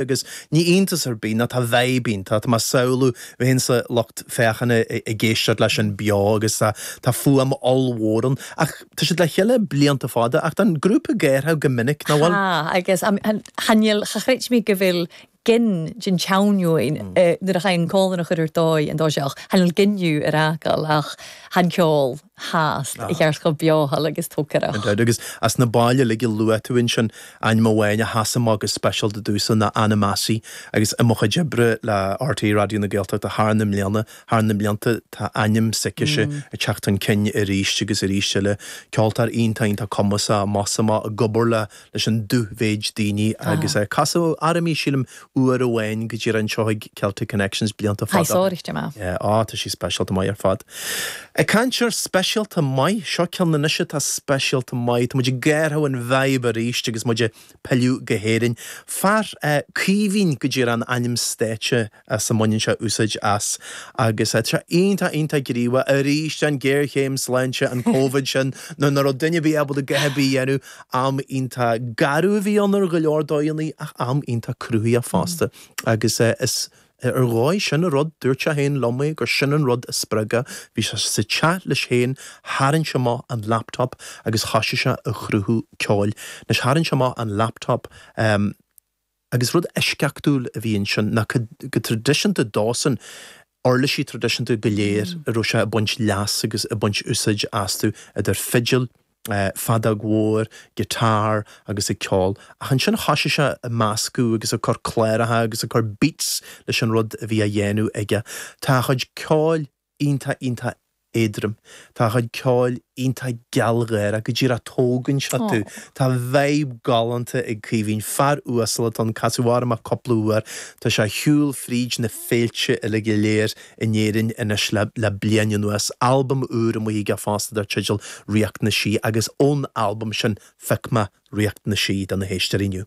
agus ní iontas ar bith ná tá vibe iontach, tá mé ag samhlú, bheith sa lucht féachana ag éisteacht leis sin beo agus tá fuaim ollmhór ann ach tá siad le chéile blianta fada ach tá an grúpa ag athrú go minic, nach bhfuil? Tha agus chan eil, cha chreid mi gu bheil gin den t-seann fheadhainn nuair a chaidh an còmhlan a chur air dòigh an toiseach, chan eil gin dhiubh air fhàgail ach tha an ceòl. tha e a cheart cho beothail agus togarrach. Agus as na baill uilig a luaigh tú ansin, ainm amháin a sheas amach go speisialta domhsa ná Anna Massie agus i mo chuid oibre le RTÉ Raidió na Gaeltachta thar na mbliana, thar na mblianta, tá ainm s'aicise ag teacht chun cinn arís agus arís eile. Ceoltóir iontach iontach cumasach amach is amach, ag obair le. leis an dúmhéid daoine agus é. Casadh orm í, sílim, uair amháin go díreach anseo ag Celtic Connections blianta fada. Tha i sònraichte math. Yeah, á, tá sí speisialta maith ar fad. Ag caint ar speisialta maith, seo ceann anois atá speisialta maith. Tá muid ag athrú an vibe arís agus muid ag pilleadh go hÉirinn. Fear é Caoimhín go díreach an ainm stáitse as a mbaineann sé úsáid as agus tá sé iontach iontach gníomhach. Arís an géarchéim sláinte, an Covid sin, nuair nach raibh duine ar bith ábalta a dhath ar bith a dhéanamh, am iontach garbh a bhí ann ar go leor dóigheannaí ach am iontach cruthaitheach fosta agus is ar ndóigh sin an rud, dúirt sé féin liom é, gur sin an rud a spreag é. Bhí sé sa teach leis féin, tharraing sé amach an laptop agus thosaigh sé a chruthú ceoil. Anois tharraing sé amach an laptop, em, Agus rud eisceachtúil a bhí ansin ná go traidisiúnta dósan, uirlisí traidisiúnta go léir a raibh sé ag baint leas agus ag baint úsáid astu, idir fidil, feadóg mhór, guitar agus ag ceol. Ach ansin thosaigh sé ag meascadh agus ag cur cláracha agus ag cur beats leis an rud a bhí á dhéanamh aige. Tá a chuid ceoil. iontach iontach éadrom. Tá a chuid ceoil iontach gealgháire. Go díreach tógann sé tú. Tá vibe galánta ag Caoimhín. Fear uasal atá ann, casadh orm é cúpla uair. Tá sé a shiúl fríd na féilte uilig go léir in Éirinn anois le le bliain anuas. Albam úr amuigh aige fosta dar teideal Ríocht na Sí agus ón albam sin phioc mé Ríocht na Sí do na héisteoirí inniu.